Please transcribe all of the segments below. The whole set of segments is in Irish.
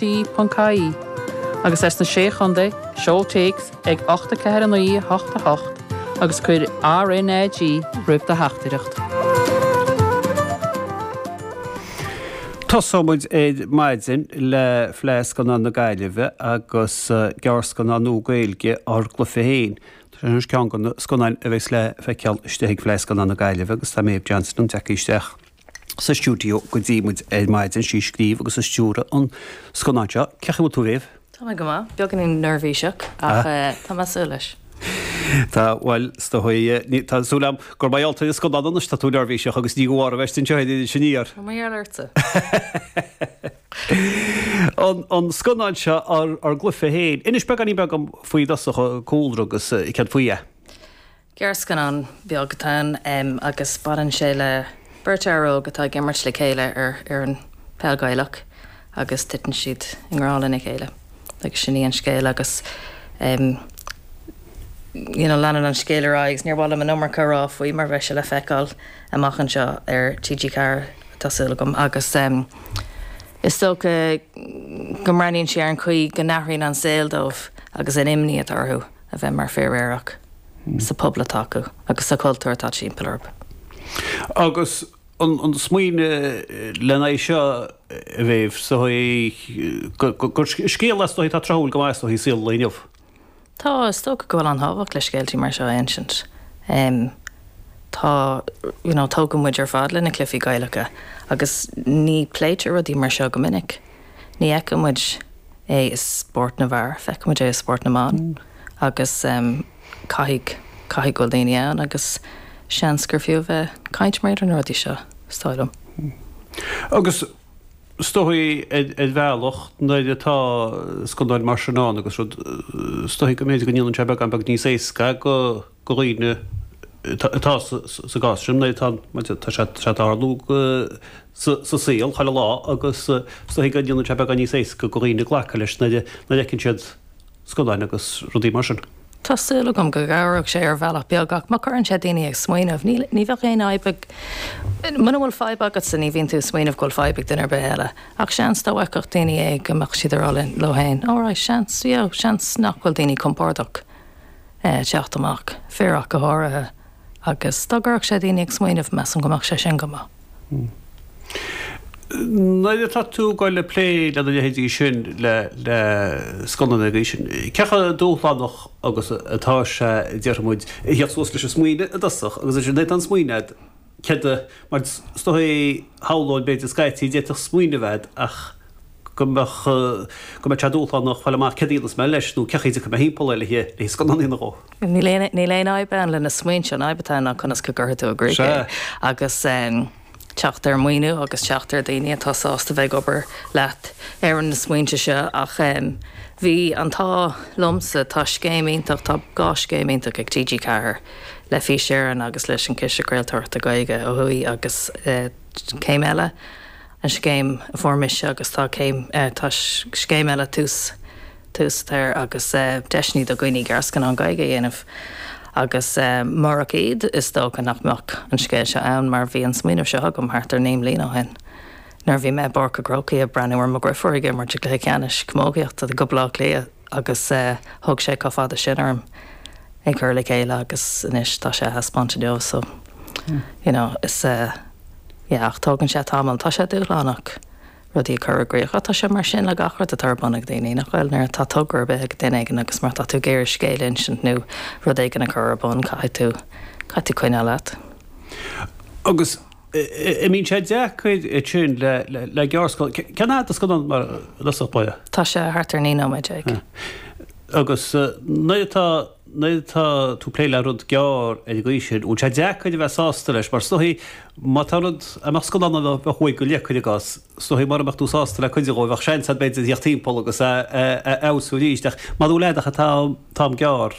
Bee.ie, agus as na Sé Chontae, seol téacs ag 849888 agus cuir RNAG roimh do theachtaireacht. Tosóidh muid ar maidin le Fleadh Scannán na Gaillimhe agus gearrscannán nua Gaeilge ár gcluiche féin. Tá sé ar cheann de na scannáin a bheidh le feiceáil istigh ag Fleadh Scannán na Gaillimhe agus tá Méabh Johnston ag teacht isteach. sa stiúideo go dtí muid ar maidin, is í a scríobh agus a stiúraigh an scannán seo. Cén chaoi a bhfuil tú, a Mhéabh? Tá mé go maith. Beagáinín neirbhíseach ach tá mé ag súil leis. Tá, bhuel, is dócha é. Tá súil agam gur mar gheall ar an scannán anois atá tú neirbhíseach agus ní go bharr a bheith anseo féin anois aniar! Tá mar gheall ortsa. An scannán seo ár gcluife féin. Inis beagáinín beag dom faoi i dtosach, an cúlra agus céard faoi é. Gearrscannán beag atá ann agus baineann sé le beirt fhear óg atá ag imirt le chéile ar fhoireann peil Ghaelach agus titeann siad i ngrá lena chéile agus sin í an scéal agus you know leanann an scéal ar aghaidh agus níor mhaith liom an iomarca a rá faoi mar bheidh sé le feiceáil amach anseo ar TG4 tá súil agam agus is dócha go mbreathnaíonn sé ar an chaoi go n-athraíonn an saol dóibh agus an imní atá orthu. a bheith mar fir aerach sa phobal atá acu agus sa chultúr atá timpeall orthu. Agus an smaoineamh lena aghaidh seo, a Mhéabh, is dóigh gur scéal is dóigh atá tráthúil go maith is dóigh i saol an lae inniu. Tá, is dócha go bhfuil an-tábhacht le scéaltaí mar seo a insint. Tá, you know, tógadh muid ar fad le na cluifí Gaelacha agus ní pléitear rudaí mar seo go minic. Ní fheiceann muid é i spórt na bhfear, feiceann muid é i spórt na mban agus caithfidh, caithfidh go bhfuil daoine ann agus seans gur fiú a bheith ag caint mar gheall ar na rudaí seo, is dóigh liom. Agus is dóigh ar bhealach nuair atá scannáin mar sin ann agus rud, is dóigh go mb'fhéidir go ndéanann sé beagán beag níos éasca go dhaoine atá sa gcás sin, nuair atá, tá sé, tá sé ag tarlú go, sa saol, chuile lá, agus is dóigh go ndéanann sé beagán níos éasca do dhaoine glacadh leis nuair a fheiceann siad scannáin agus rudaí mar sin. Tá súil agam go gcabhróidh sé ar bhealach beag, ach má chuireann sé daoine ag smaoineamh, níl, ní bheadh aon fhadhb ag, muna bhfuil fadhb agatsa ní bhíonn tú ag smaoineamh go bhfuil fadhb ag duine ar bith eile, ach seans dá bhfeicfeadh daoine é go mbeadh siad ag rá leo fhéin, alright, seans, you know, seans nach bhfuil daoine compordach teacht amach, fir ach go háirithe, agus dá gcuirfeadh sé daoine ag smaoineamh, measaim go mbeadh sé sin go maith. Nuair atá tú ag dul ag plé lena leithéidí sin, le scannáin ar an gcaoi sin, cé chomh dúshlánach agus atá sé, déarfaidh muid, a theacht suas leis an smaoineamh i dtosach? Agus ansin, nuair atá an smaoineamh agat, céard a, mar is dóigh, shamhlóinn, b'fhéidir, scaití, d'fhéadfadh smaoineamh a bheith agat ach. go mbeadh, go mbeadh sé dúshlánach fáil amach céard a dhéanfas mé leis nó cén chaoi a bhfeicfidh mé thimpeall é le hith scannánaí nó dhó. Níl aon, níl aon fhadhb le na smaointe, an fhadhb atá ann ná conas go gcuirfidh tú i gcrích é Sea. agus teacht ar mhaoiniú agus teacht ar daoine atá sásta bheith ag obair leat ar na smaointe seo ach bhí an t-ádh liomsa, tá scéim iontach, tá dhá scéim iontach ag TG Ceathair, le Fís Éireann agus leis an Chiste Craoltóireachta Gaeilge ó thuaidh agus scéim eile, an scéim a fuair mise agus tá céim, tá scéim eile tús, Tús atá agus deiseanna do dhaoine gearrscannán Gaeilge a dhéanamh agus murach iad is dócha nach mbeadh an scéal seo ann mar bhí an smaoineamh seo agam thart ar naoi mbliana ó shin nuair a bhí mé i bPáirc a' Chrócaigh ag breathnú ar mo dheirfiúr ag imirt i gcluiche ceannais camógaíochta do Bhaile Átha Cliath agus thóg sé chomh fada sin orm é chur le chéile agus anois tá sé á thaispeáint inniu so. you know, is eh, yeah, ach tógann sé tamall, tá sé dúshlánach rudaí a chur i gcrích ach tá sé mar sin le gach rud atá ar bun ag daoine, nach bhfuil? Nuair atá togra ar bith ag duine éigin agus má tá tú ag iarraidh scéal a insint nó rud éigin a chur ar bun, caithfidh tú, caithfidh tú coinneáil leat. Agus an mbíonn sé deacair ansin le, le, le gearrscannán, cén fhad an scannán mar Lios Átha Buí? Tá sé thart ar naoi nóiméad déag. Agus eh, nuair atá. nuair atá tú ag plé le rud gearr ar an gcaoi sin, bhfuil sé deacair a bheith sásta leis, mar tá a fhios a'd, má tá rud, a mbeadh scannán ann a bheadh uair go leith, cuir i gcás, tá a fhios a'd, mura mbeadh tú sásta le cuid dhó, bheadh seans a'd, b'fhéidir, a theacht timpeall agus a fheabhsú arís, ach mara bhfuil a'd ach an t-am gearr,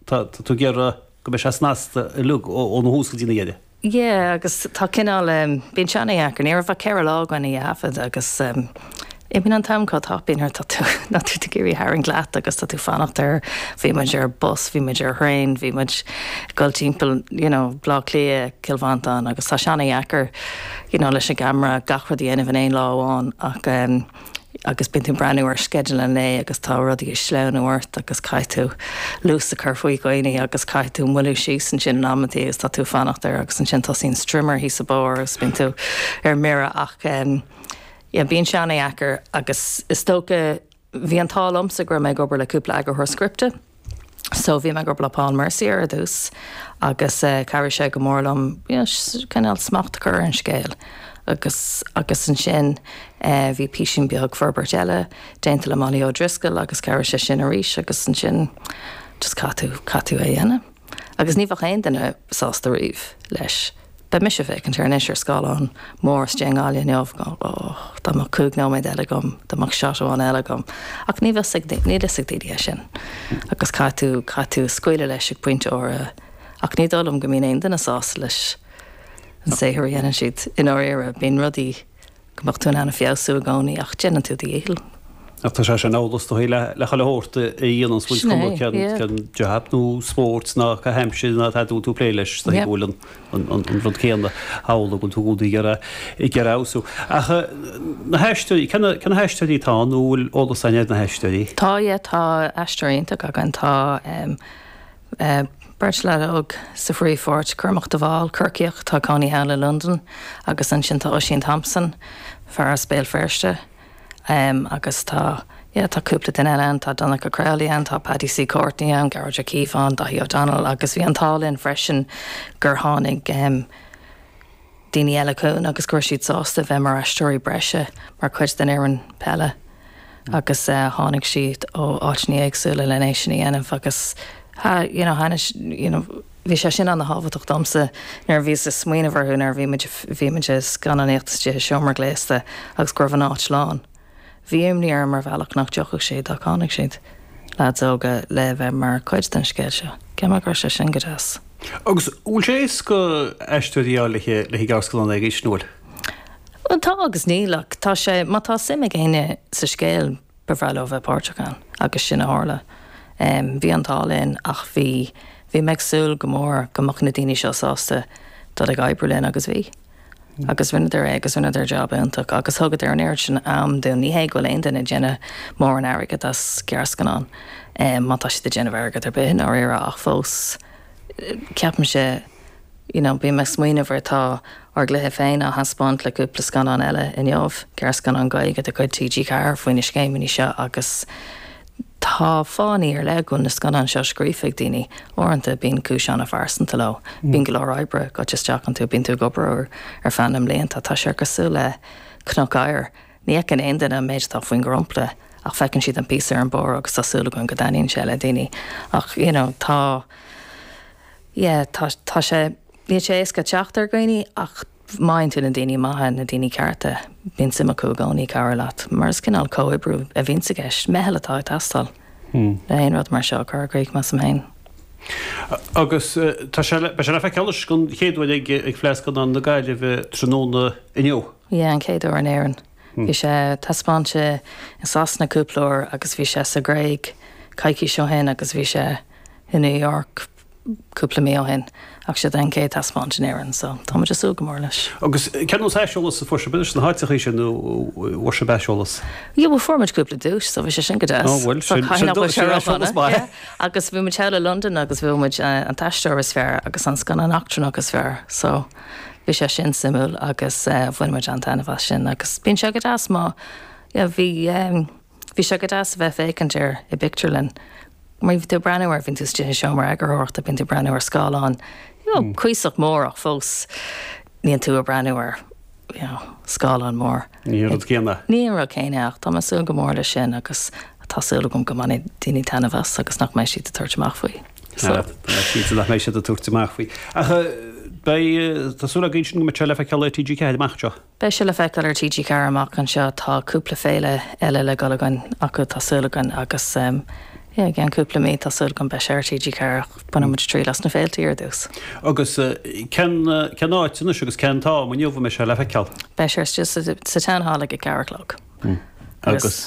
tá tú ag iarraidh go mbeidh sé snasta uilig, óna thús go dtí a dheireadh. Yeah agus tá cineál ehm bíonn sé an-deacair ní raibh ach ceithre lá againn á thaifead agus ehm imíonn an t-am chomh tapaidh nuair atá tú nuair atá tú ag iarraidh tarraingt leat agus tá tú ag fanacht ar bhí muid ar bus bhí muid ar thraein bhí muid ag dul timpeall you know Bleá Cliath Cill Mhantáin agus tá sé an-deacair you know leis an gceamara gach rud a dhéanamh in aon lá amháin ach ehm agus bíonn tú ag breathnú ar sceideal an lae agus tá rudaí ag sleamhnú ort agus caithfidh tú luas a chur faoi dhaoine agus caithfidh tú moilliú síos ansin in amanntaí agus tá tú ag fanacht ar agus ansin tosaíonn strimmer thíos sa mbóthar agus bíonn tú ar mire ach em yeah, bíonn sé an-deacair agus is dócha bhí an t-ádh liomsa go raibh mé ag obair le cúpla eagarthóir scripte So bhí mé ag obair le Paul Mercier ar dtús agus chabhraigh sé go mór liom cineál smacht a chur ar an scéal agus agus ansin bhí písín beag forbairt eile déanta le Molly O'Driscoll agus chabhraigh sé sin arís agus ansin just caithfidh tú caithfidh tú é a dhéanamh agus ní bheadh aon duine sásta riamh leis. Beidh mise ag féachaint air anois ar scáileán mór anseo i nGaillimh inniu, och, dá mbeadh cúig nóiméad eile agam, dá mbeadh shot amháin eile agam, ach níl 'fhios ag, níl 'fhios ag daoine é sin. Agus caithfidh tú, caithfidh tú scaoileadh leis ag pointe áirithe. Ach ní dóigh liom go mbíonn aon duine sásta leis an saothar a dhéanann siad i ndáiríre, bíonn rudaí, go mbeadh tú in ann a feabhsú i gcónaí ach déanann tú do dhícheall. Ach tá sé sin amhlaidh le chuile shórt a dhéanann tú is dóigh Sin é, cuma cén yeah. cén jab nó spórt ná caitheamh aimsire atá tú ag plé leis so Yeah. bhfuil an an an an rud céanna thall a bhfuil tú údaí ar a ag ar a fheabhsú. Ach eh, na haisteoirí cén na cén na haisteoirí atá ann nó bhfuil eolas againn ar na haisteoirí? Tá, yeah, tá aisteoirí iontach againn, tá em. Beirt leaid óg sa phríomhpháirt, Cormac de Bhál, Corcaíoch atá ina chónaí thall i Londain, agus ansin tá Oisín Thompson, fear as Béal Feirste, agus tá, yeah, tá cúpla duine eile ann, tá Donncha Crowley ann, tá Paddy C. Courtney ann, Gearóid Caomhánach, Daithí O'Donnell, agus bhí an t-ádh linn freisin gur tháinig, daoine eile chugainn agus go raibh siad sásta bheith mar aisteoirí breise, mar chuid den fhoireann peile agus tháinig siad ó áiteanna éagsúla lena é sin a dhéanamh agus you know thaitnigh you know bhí sé sin ana-thábhachtach domsa nuair a bhíos ag smaoineamh orthu nuair a bhí muid, bhí muid ag scannánaíocht is i dtithe seomra gléasta agus go raibh an áit lán. Bhí imní orm ar bhealach nach dtiocfadh siad ach tháinig siad, leaids óga, le bheith mar chuid den scéal seo. So yeah bhí sé sin go deas. Agus an bhfuil sé éasca aisteoirí a fháil le haghaidh gearrscannáin na laethanta seo? Bhuel, tá agus níl, ach tá sé, má tá suim ag éinne sa scéal, ba bhreá leo bheith páirteach ann agus sin a tharla. Bhí an t-ádh linn ach bhí, bhí mé ag súil go mór go mbeadh na daoine seo sásta dul ag oibriú linn agus bhí. Agus rinneadar é agus rinneadar job iontach agus thugadar an oiread sin am dúinn. Ní hé go bhfuil aon duine ag déanamh mórán airgid as gearrscannán, má tá siad ag déanamh airgead ar bith i ndáiríre, ach fós ceapaimse, you know, bím ag smaoineamh ar, tá ár gcluiche féin á thaispeáint le cúpla scannán eile inniu, gearrscannán Gaeilge de chuid TG4 faoi na scéimeanna seo agus Tá fáthanna ar leith go bhfuil na scannáin seo scríofa ag daoine. Uaireanta bíonn cúis an-phearsanta leo. Bíonn go leor oibre ag goil isteach iontu, bíonn tú ag obair orthu ar feadh na mblianta. Tá sé cosúil le cnoc oighir. Ní fheiceann aon duine an méid atá faoin dhromchla ach feiceann siad an píosa ar an mbarr agus tá súil againn go dtaitníonn sé le daoine. Ach you know tá yeah tá sé níl sé éasca teacht ar dhaoine ach. Má fhaigheann tú na daoine maithe, na daoine cearta, bíonn suim acu i gcónaí cabhrú leat, mar is cineál comhoibriú a bhíonns i gceist, meitheal atá ag teastáil le haon rud mar seo a chur i gcrích, measaim féin. Agus tá sé, beidh sé le feiceáil anois, don chéad uair ag Fleadh Scannán na Gaillimhe tráthnóna inniu. Yeah, an chéad uair in Éirinn. Bhí sé taispeáinte i Sasana cúpla uair agus bhí sé sa Ghréig coicís ó shin agus bhí sé i New York cúpla mí ó shin ach seo é an chéad taispeáint in Éirinn so tá muid ag súil go mór leis. Agus cén sórt aiseolas a fuair sibh sna háiteachaí sin nó bhfuair sibh aiseolas? Yeah bhuel fuair muid cúpla duais so bhí sé sin go deas. Oh bhuel sin sin dócha sin aiseolas maith. Yeah agus bhí muid thall i Londain agus bhuaigh muid an t-aisteoir is fearr agus an scannán eachtrannach is fearr so bhí sé sin suimiúil agus bhain muid an-taitneamh as sin agus bíonn sé go deas má yeah bhí ehm Bhí sé go deas a bheith ag féachaint air i bpictiúrlann mar bíonn tú ag breathnú air, bíonn tú istigh i seomra eagarthóireachta, bíonn tú ag breathnú ar scáileán, you know, cuíosach mór ach fós níl tú ag breathnú ar, you know, scáileán mór. Ní hé an rud céanna. Ní hé an rud céanna ach tá mé ag súil go mór leis sin agus tá súil agam go mbainfidh daoine taitneamh as agus nach mbeidh siad ag tabhairt amach faoi. So. Ah, tá mé cinnte nach mbeidh siad ag tabhairt amach faoi. Ach eh, beidh, eh, tá súil againn go mbeidh sé le feiceáil ar TG4 amach anseo. Beidh sé le feiceáil ar TG4 amach anseo, tá cúpla féile eile le dhul againn chucu tá súil againn agus yeah, i gceann cúpla mí tá súil agam beidh sé ar TG4 ach bainfidh muid triail as na féiltí ar dtús. Agus cén, cén áit anois agus cén t-am inniu a mbeidh sé le feiceáil? Beidh sé ar sa Town Hall ag a ceathair a chlog. Agus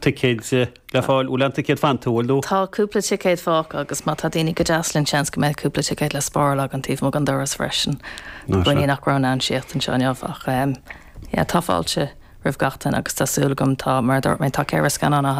ticéid? Le fáil, an bhfuil aon ticéad, an bhfuil?. Tá cúpla ticéad fágtha agus má tá daoine go deas linn seans go mbeidh cúpla ticéad le spáráil againn taobh amuigh den doras freisin. Tá daoine nach raibh in ann teacht anseo inniu ach yeah tá fáilte roimh gach duine agus tá súil agam tá, mar a dúirt mé, tá ceithre scannán á.